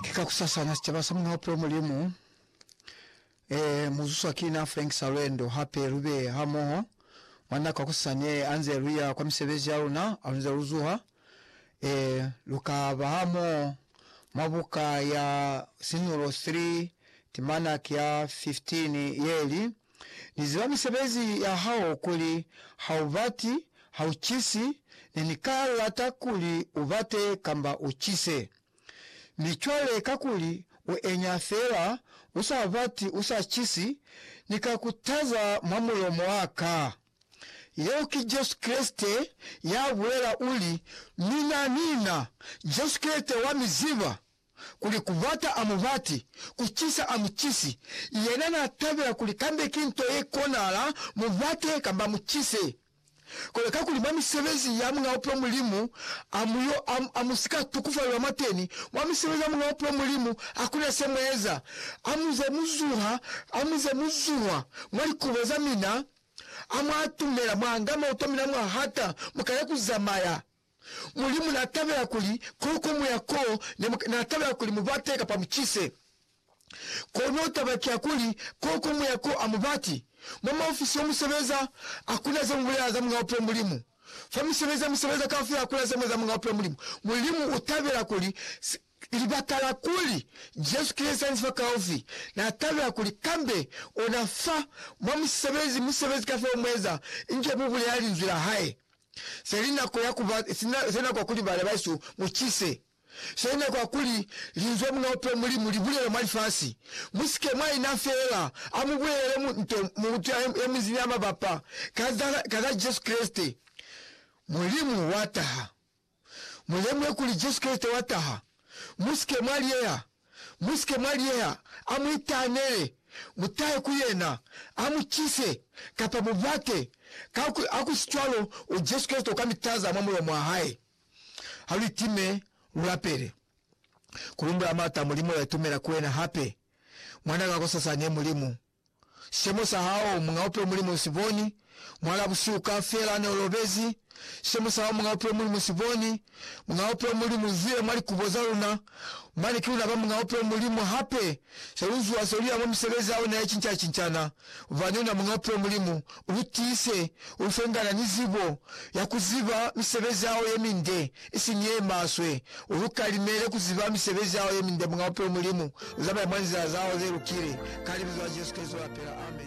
Ki kakusasana sicaba sa Muuna Hopelo Mulimu e muzuswa ki na Frank Salwendo. Hape lube hamoho mwa nako ya kusasa ne anze luya kwa misebezi yaluna. Halunze luzuha, e lukaba hamoho mwa buka ya Sinulo 3 temana ya 15 yeli, Ni ziba misebezi ya hao kuli ha u bati, ha u cisi, ne ni ka lata kuli u bate kamba u cise. Mi cwale kakuli u enya fela, u sa bati, u sa cisi, Ni ka ku taza mwa mulomo wa ka. Yeo ki Jesu Kreste ya bulela, uli, Mina, mina, Jesu Kreste wa mi ziba. kuli kubata a mubati, kucisa a mucisi, yena na tabela kuli kambe ki nto ye konahala mubate kamba mucise. Kono kakuli mwa misebezi ya Muñ'a Bupilo Mulimu a mu yo, a, a mu si ka tukufalelwa mwateni, mwa misebezi ya Muñ'a Bupilo Mulimu hakuna se mu eza. A mu ze mu zuha, a mu ze mu zuhwa mwa likubo za mina, a mwa atumela, mwa anga mauto a mina mwa hata, mu ka ya ku zamaya. Mulimu n'a tabela kuli ko ko mu ya ko ne mu, n'a tabela kuli mu bate kapa mu cise. Kono taba ki ya kuli, ko ko mu ya ko a mu bati. Mwa maofisi yo mu sebeza, ha ku na ze mu bulela za Muñ'a Bupilo Mulimu. Fa misebezi ya mu sebeza kaufela ha ku na ze mu eza Muñ'a Bupilo Mulimu. Mulimu u tabela kuli Libakala kuli, Jesu ki Leza Nzibakaufi, na tabela kuli kambe ona fa mwa musebezi, musebezi kafela umueza inge mu bulela linzwi la hae. Se li nako ya kuba, se nako ya kuli bana bahesu mu cise. Se nako ya kuli linzwi la Muñ'a Bupilo Mulimu li bulele mwa lifasi. Mu si ke mwa ina feela a mu bulelele nto mu utwa ye mu nzi ni ya mabapa ka za Jesu Kreste, Mulimu wa taha. Mu lemuhe kuli Jesu Kreste wa taha. Mu si ke mwa liyeha. Mu si ke mwa liyeha. A mu itahanele. Mu tahe ku Yena. A mu cise, kapa mu bate. Ka ku, ha ku si cwalo, u Jesu Kreste u ka mi taza mwa mulomo wa Hae. Ha lu itime, lu lapele. Ku lumbula Mata, Mulimu, ya itumela ku Wena hape. Mwan'a ka kosasani, Mulimu. Sicemo sa hao, Muñ'a Bupilo Mulimu u si boni, Mwal'a busihu kaufela ne u lobezi, Sicemo sa hao, Muñ'a Bupilo Mulimu u si boni, Muñ'a Bupilo Mulimu u zwile mwa likubo za luna, Mane ki luna ba Muñ'a Bupilo Mulimu hape, Se lu zuha se lu ya mwa misebezi ya ona ye cinca-cincana, Bubani una Muñ'a Bupilo Mulimu, Lu tiise u fengana ni zibo ya ku ziba misebezi ya hao ye minde, isiñi ye maswe. U lu kalimele ku ziba misebezi ya hao ye minde, Muñ'a Bupilo Mulimu. Lu zamaye mwa nzila za hao ze lukile, ka Libizo la Jesu Kreste, lu lapela. Amen.